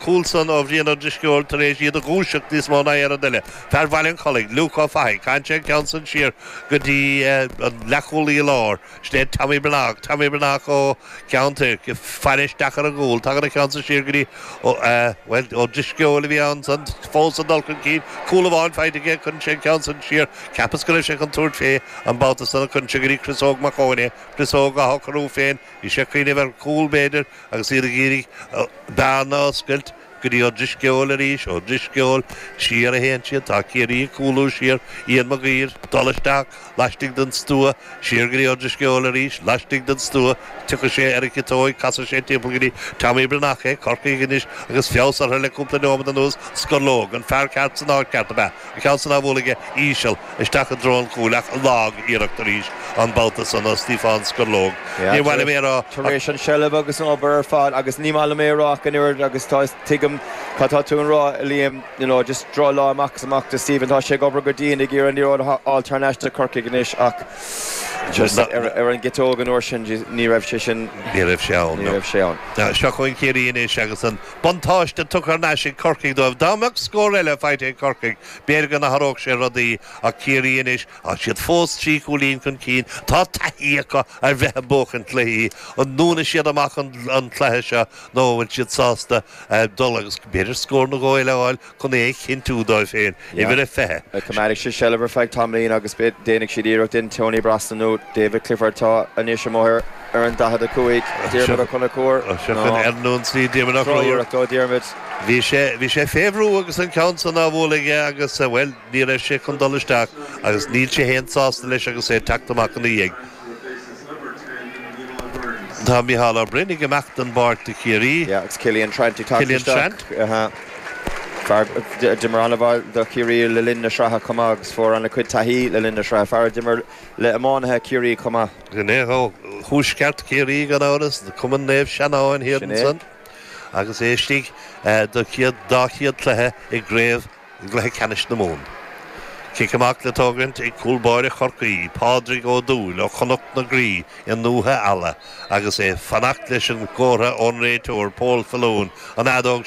cúl san, ó Bhrian Ó Drisceoil tar éis iad a dhúiseacht níos mó ná aon rud eile. Fear Bhaile an Chollaigh, Luke Ó Fathaigh, chaith sé an ceann san siar go dtí an leath-chúlaí i lár. Sin é Tommy Breathnach, Tommy Breathnach ó Cheann Toirc, faire isteach ar an gcúl. Tagann an ceann san siar go dtí, bhuel, Ó Drisceoil a bhí ansan fós ag dul chun cinn. Cúl amháin faighte aige, cuireann sé an ceann san siar. Cheapas go raibh sé chun tabhairt fé an babhta san ach cuireann sé go dtí Chris Óg Mac Eoin é. Chris Óg á shocrú féin, bhí sé ag cuimhneamh ar chúl b'fhéidir, agus iad ag iarraidh bearna a oscailt go dtí Ó Drisceoil arís, Ó Drisceoil, siar a théann siad, tá Ciarraí ag cúlú siar, Iain Mac Uidhir, dul isteach, laistigh den stua, siar go dtí Ó Drisceoil arís, laistigh den stua, tiocfaidh sé ar an chiotóig, casfaidh sé timpeall go dtí Tommy Breathnach, Corcaígh anois agus feabhas orthu le cúpla neomat anuas, Scurlóg, an fear ceart san áit ceart ab ea? An ceann san á bhualadh aige íseal isteach i dtreo an chúil ach lagiarracht arís an babhta san do Stíofán Scurlóg. Níor mhaith liom é a rá ach. Tar éis an tseilbh agus an obair ar fad agus ní maith liom é a rá ach an oiread agus tá is tuigim cad tá tú a rá a Liam you know just drochlá amach is amach do Stephen tá sé ag obair go dian ag iarraidh an liathróid a fháil thar n-ais do Corcaigh anois ach just ar an gciteoig an uair sin ní raibh sé sin ní raibh sé ann ní raibh sé ann. Seo chugainn Ciarraí anois agus an. Buntáiste tugtha thar n-ais ag Corcaigh dóibh. Dá mbeadh scór eile faighte ag Corcaigh, b'fhéidir go n-athródh sé rudaí ach Ciarraí anois, tá siad fós trí chúilín chun cinn, tá taithí acu ar bheith ag buachaint cluichí. An ndúnfaidh siad amach an cluiche seo nó an bhfuil siad sásta dul agus b'fhéidir scór nó dhó eile a fháil? chun é a chinntiú dóibh féin, uimhir a 20. Coimeádfaidh siad seilbh ar feadh tamaillín agus déanfaidh siad iarracht ansin Tony Brosnan nó David Clifford atá anois amuigh ar an 45, Diarmuid Ó Conchúir nó Seo chugainn ar aon tslí Diarmuid Ó Conchúir. Drochiarracht ó Dhiarmuid. Bhí sé, bhí sé fé bhrú agus an ceann san á bhualadh aige agus, bhuel, ní raibh sé chun dul isteach agus níl sé fhéin sásta leis agus é ag teacht amach ina dhiaidh. Tá Micheál Ó Broin ag imeacht den bpáirc do Chiarraí. Yeah, agus Cillian Trant ag teacht isteach. Cillian Trant. Ahá. Fear a d'imir ana-bhall do Chiarraí le linn na sraithe chomh maith agus fuair an-chuid taithí le linn na sraithe. Fear a d'imir le iománaithe Chiarraí chomh maith. Is é ó thuaisceart Chiarraí gan amhras, do Cumann Naomh Seanáin thiar ansan, agus é istigh dá chéad cluiche i gCraobh i gcluiche ceannais na Mumhan. Cic amach le tógaint ag cúl báire Chorcaí, Pádraig Ó Dúill ó Chnoc na Graí i nDúiche Ealla agus é ag fanacht leis an gcomhartha ón réiteoir Paul Faloon an fheadóg